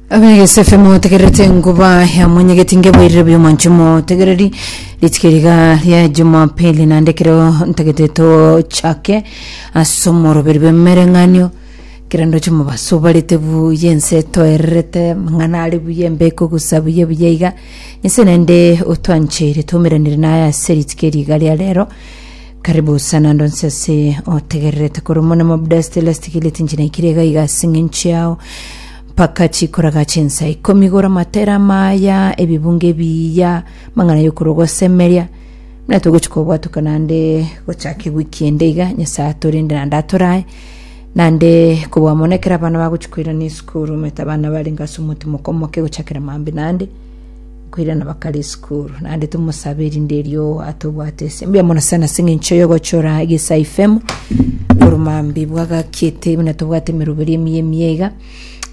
abegesefe motegererete enkuba ya monyegeti ngeboirire buya omonche motegereri ritike riga ria jumapili naende kero ntagete tochake ase omoroberi bw'emereng'anio kero ndoche mobaso barete buya ense etoererete mang'ana are buya embeko egosa buya buya iga nyasae naende otwancheire twaumeranire naye ase ritike riga ria rero Karibu sana ndonse ase otegererete korwa mono mobudasti lastigili tinchinaikire iga iga ase eng'encho yao mpaka chikoraga chinsa ikomi gora matera maya ebibunge biya mang'ana yokorwa gosemeria muna togochi kobwatuka nande gochaka ewiki ende iga nyasaye atorinde nande atorae nande kobwa mono ekero abana bagochi koirana esukuru omete abana barenge ase omotimo okomoke gochakera mambi nande nkoirana bakare esukuru naende tomosabe erinde erio atobwate ase mbuya mono sana ase eng'encho yogochora egesa ifemu oromambi bwagakiete buna tobwate emeroberi emiya emiya iga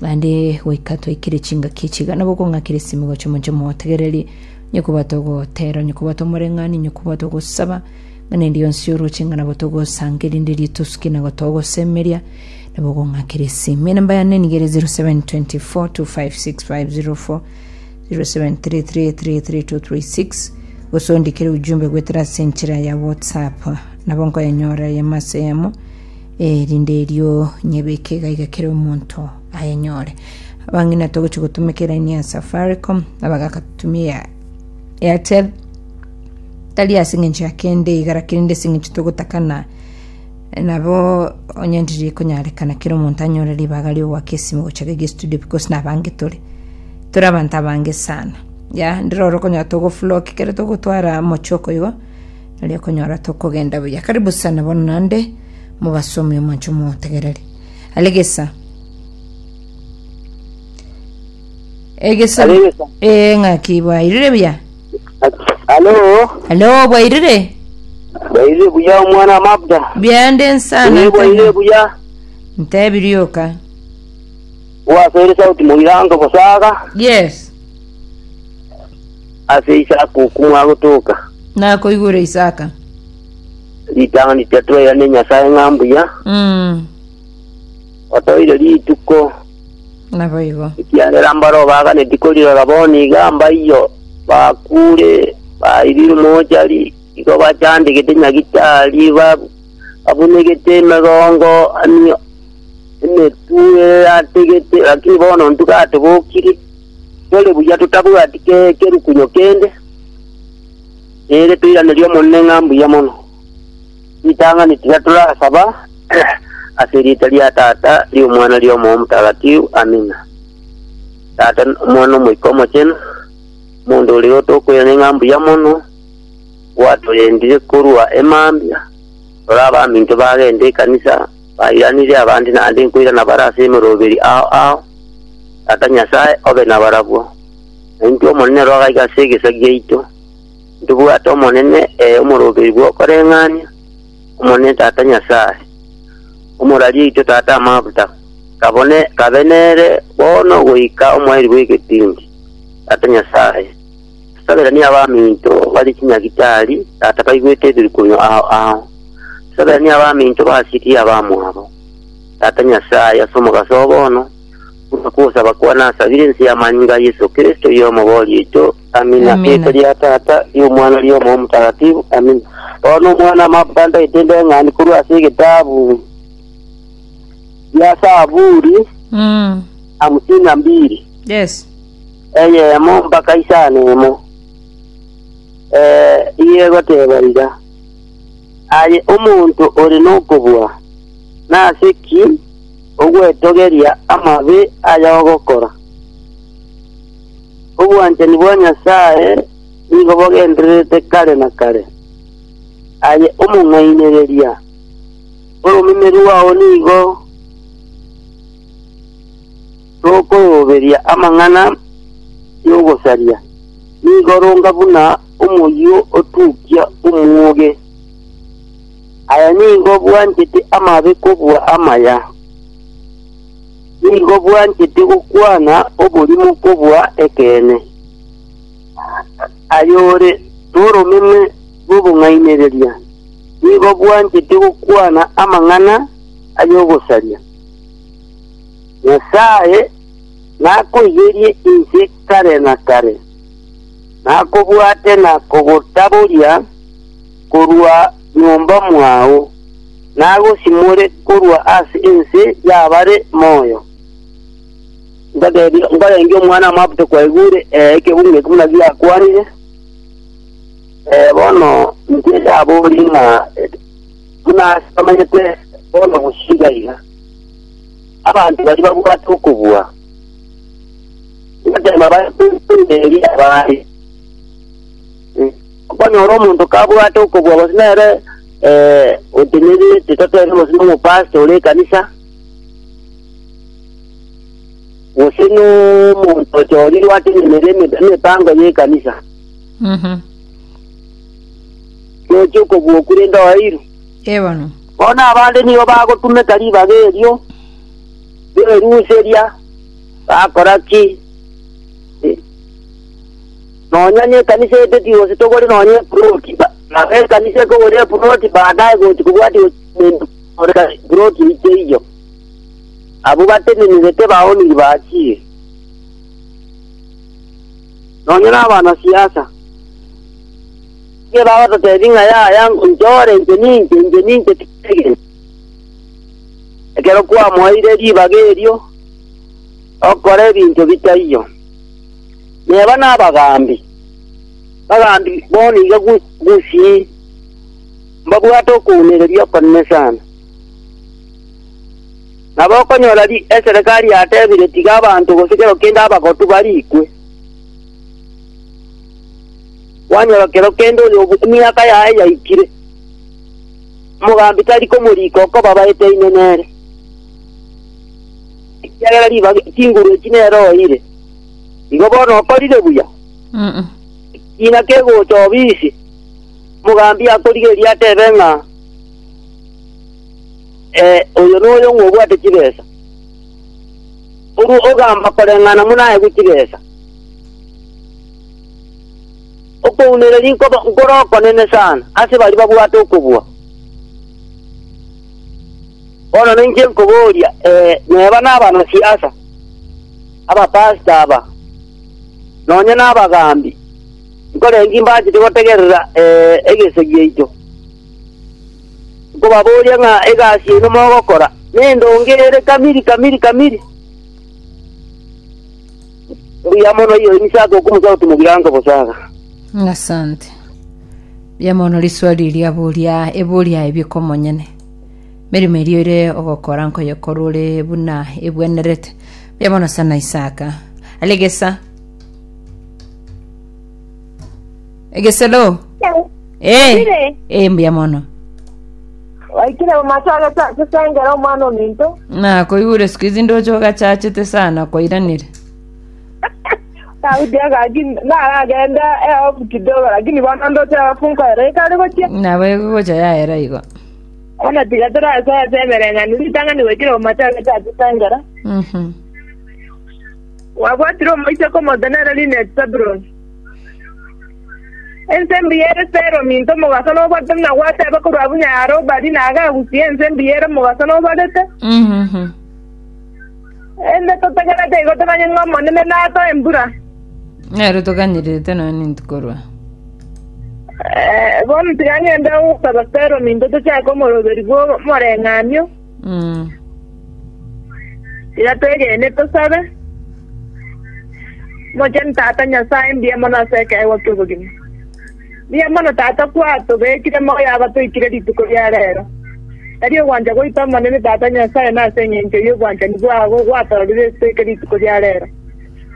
naende goika twaikire chingaki echi iga nabo okong'akera esimi gocha omonto omotegererie onye koba togotera onye koba tomoreng'ani onye koba togosaba ng'ana eria yonsi oroche ng'a nabo togosanga erinde erio tosuke nago togosemeria nabo okong'akera esimi enamba yane niga ere 0724 256504 0733332336 gose ondikere ujumbe gwetera ase enchera ya whatsapp nabo nkoyenyora eyemo ase eyemo erinde erio nyebeke iga iga kera omonto ayenyore abang'ina togochi gotumeka eraini ya safaricom abagaka tutumie ya airtel tari ase eng'encho ya kende iga lakini nde ase eng'encho togotakana Nabo onye ndiri konyarekana kera omonto anyore ribaga ri'ogoaka esimi gocha gege estudio because nabange tore tore abanto abange sana ya ndire oro okonyora togofloki kere togotwara mochoko igo nari okonyora tokogenda buya karibu sana bono nande mobasomi omonche omotegereri alegesa Egeso. Arebe sa. Eh ng'aki bwairire buya. Halo, Hello bwairire. baire buya omwana wa Mabda. Biande nsana. Baire baire ntana. buya. Ntebirioka. Wasoire sauti moirango bosaga Yes. ase isa kumwa gotoka. Nakoigure Isaka. Ritang'ani tatwera ne Nyasaye ng'a mbuya. Mm. Otoire rituko, Naboigo. ekiagera mbare obaganeti korirora bono iga mbaiyo bakuure, baibirwe mochari, igo bachandegete nyagitari, ba- babunegete emegongo, ani emetu erategete, lakini bono intwe gatobokiri, tore buya totabwati ke- kerukunyo kende, ere toiranerie Omonene ng'a mbuya mono. Ritang'ani tiga torasaba, ase erieta ria Tata, ri'Omwana, ri'Omoyo Omotagatifu. Amina. Tata, Omwana, Omoika Omochenu, omonto oria otokoirana ng'a mbuya mono, gwatorendirie korwa emambia, tore abaminto bagende ekanisa, bairanirie abande naende nkoirana bare ase emeroberi ao ao. Tata Nyasae, obe nabarabwo, na intwe Omonene Roho agaiga ase egesaku giaito, Ndibwate Omonene, ee omorobeyi bw'okoreng'ania, Omonene Tata Nyasae, omoraria oito Tata amaguta, kabone kabe nere bono goika omoerio bw'egetindi, Tata Nyasae, tosaberanie abaminto barie chinyagitari, Tata, baigwete ebirukunyo ao ao, tosaberanie abaminto basirie abamwabo, Tata Nyasae, ase omogaso o bono, buna kogosaba kwane asabire ense y'amanyinga a Yeso Kristo, oyo omobori oito, Amina. Amina. Riita ria Tata, ria Omwana, ria Omoyo Motakatifu. Amina. Bono omwana amabanda etende eng'ani korwa ase egetabu ya Saburi Mm. hamsini na mbili Yes. eyemo mpaka isano emo Eh, iye egoteba iga aye omonto ore nokobua nase ki ogwetogeria amabe aya ogokora Obwanchani bwa Nyasae nigo bogendererete kare na kare. Aye omong'ainereria, oromeme rwao nigo rokoroberia amang'ana y'ogosaria, nigo ronga buna omoyio otukia omwoge. Aye nigo bwanchete amabe kobua amaya. Nigo bwanchete gokwana oborimo kobua ekeene. Ayore noromeme rw'obong'ainereria nigo bwanchete gokwana amang'ana ay'ogosaria. Nyasae nakoiyerie inse kare na kare, nakobwate na kogotaboria, korwa nyomba mwao, nagosimore korwa ase ense y'abare moyo. Nkateebia, nkarenge Omwana-o-Mabuta kwaigure ekebungo ekio buna giakwanire, ee, bono intwe tinaborie ng'a buna ase bamanyete bono gosika iga, abanto baria babwate okobua, nkateema baye koimberi abande. Okonyora omonto kabwate okobua gose nere otenenete, totere gose nomopasta ore ekanisa, gose nomonto ochorirwe atenenere eme- emepango y'ekanisa, nochia okobua okure inde oeirwe. Ebono. Bono abande nigo bagotumeka ribaga erio ri'oeruseria, bakora ki? Eh, Nonya nekanisa eteti gose togore nonya eploti, ba- baba ekanisa ekogora eploti baadaye gochi kobwatia gochi korenta korenta eploti eito eyio. Abwo batenenirete baoniri bachire. Nonya na abanasiasa. Inche bagototebi ng'a yaya nchore inche ninche inche ninche tigitege. Ekero kwamoeire ribaga erio, okora ebinto bitaiyo. Neba nabagambi, bagambi bono iga gusii, mbabwate okounereria okonene sana. Nabo okonyora eserekari yatebire tiga abanto gose kero kende abagotu barikwe, kwanyora kero kende oyo emiaka yaye yaikire, omogambi tari komorika okobabaete inwe nere. ekiagera ribaga chinguru echi nere oeire. Igo bono okorire buya. Ekiina kegocha obisi, omogambi akorigereria atebe ng'a, Eh, oyo noyo ng'a obwate chibesa. Korwa ogamba koreng'ana buna aegwe chibesa. Okounereria nkoba nkore okonene sana ase baria babwate okobua. Bono ninche nkoboria, Ee, neba nabanasiasa, abapasiti aba, nonya nabagaambi, nkore ki mbachete gotegerera egese giaito? Nkobaboria ng'a egasi yaino mogokora nendonge ere kamiri, kamiri, kamiri? Mbuya mono iyo inse ake okomusa oti mogirango bosaga. Asante. Mbuya mono riswali riaboria eboria ebio komonyene. Emeremo eria oire ogokora nkoyekora ore buna egwenerete. Buya bono sana Isaka. Ari egesa. Egesa lo. Eh. Ndire. Eh, mbuya mono. waikire omato agatase sengera omwana ominto Na koigure siku izi ndoche ogachachete sana koiranire. daudi agaki naragende eofu kidogo lakini bono ndote eofu nkoere ikare gochia Nabo egocha yaera igo. Bono tiga torasoe ase emereng'anio ritang'ani goikera omote agete atotengera. Gwabwatire omoiseke omotenwa ere riina eti Zabuloni. Ense mbuya ere Sela ominto omogaso nobwatete buna gwateeba korwa abwo Nyarobali, na agagusia ense mbuya ere omogaso nobarete. Naende totagerete igo tomanye ng'a Omonene natoe embura. Nere toganyererete nonya ninki korwa. Eh, bono tiga ng'ende gosaba Fero minto tochake omoroberi bw'omoreng'anio, Mm. tiga twegene tosabe. Mochenu Tata Nyasae, mbuya mono ase ekeegwa ki'obogima. Mbuya mono Tata kwatobekire moyo abatoikire rituko ria reero. Tari ogwancha goito Omonene Tata Nyasae nase engencho y'obwanchani bwabo gwatororire esito eke rituko ria reero.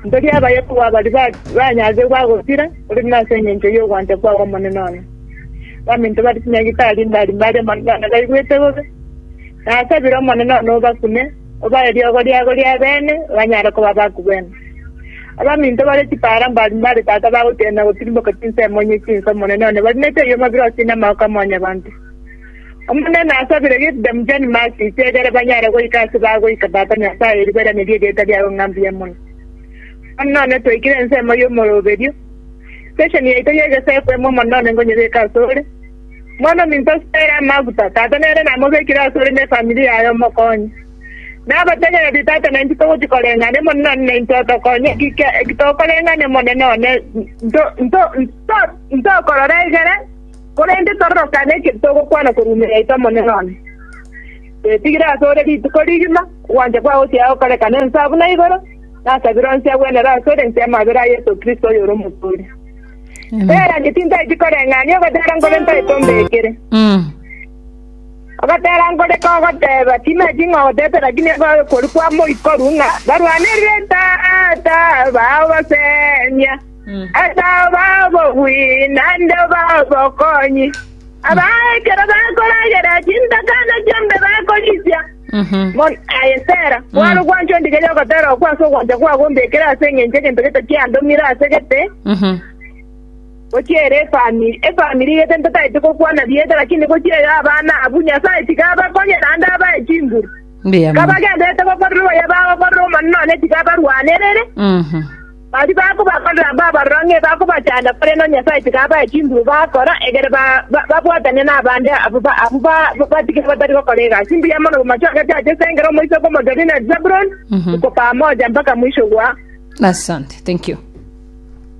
Ntoria abaye kobua baria banyarigwe agosira, korende nase engencho y'ogwancha kwao Omonene one. Abaminto bare chinyagitari mbari mbare Omonene one baigwete bobe. Nasabire Omonene one obakune, Obae riogo riabo ri'ebeene, banyare koba abaku beno. Abaminto bare chipaara mbari mbare tata bagotienera gotirimboka chinsemo inye chinsa Omonene one bari nechiayi amabirosi na amaoko a mwanyabanto. Omonene asabire Gideon John Massisi egere banyare goika ase bagoika Tata Nyasae eriberenerie erieta riago ng'a mbuya mono. Bono none twaikire ensemo y'omoroberio. Station yaito y'egesaku emo mono none ngonyebeka asore. Monominto ase aya amaguta, Tata nere namobekire ase ore nefamiri yaye omokonye. Nabategereti, Tata, naintwe togochia koreng'ana imo nonye naintwe otokonye, ekitokoreng'ana imo nonye nonye ntokorora egere, korende tororokane eke togokwana korwa ime yaito imo nonye nonye. Twetigire ase ore rituko rigima, ogwancha kwao gochiaya gokorekana ense abuna igoro, nasabire onsi agwenere ase ore inse y'amabera a Yeso Kristo oyore Omotooria. Tera ngetintaeti koreng'ania ogotera nkore ntaete ombekere. Mm. Ogotera nkore kogoteba timeti ng'a ogotete rakini ekoe kori kwa moikoru ng'a barwanerire tata bao basemia. Asao bao bogwi nande obao bokonyi. Abao ekero bakoragera chintakana chiombe bakorisia. Bono, aye Sera, kware ogwancha ondigerie ogotera okwo ase ogwancha kwabo ombekere ase engencho egento gete kiandomire ase gete, gochia ere efamiri, efamiri gete ntataeti gokwana rieta, lakini gochia ere abana abwo, Nyasae tiga abakonye naende abae chinguru. Mbuya mono. Kabagenderete gokorera oyo bagokorera omonene, nonye tiga abarwanerere. Baria bakobakorera abwo abaroro ng'a ebakobachanda, korende o Nyasae tiga abae chinguru bakora, egere babwatane nabande abwo batigire batari gokora egasi mbuya mono bamachwagete ase esengero omoisa bw'omochori na Zebuloni, iko pamoja mpaka mwisho gwa. Asante. Thank you.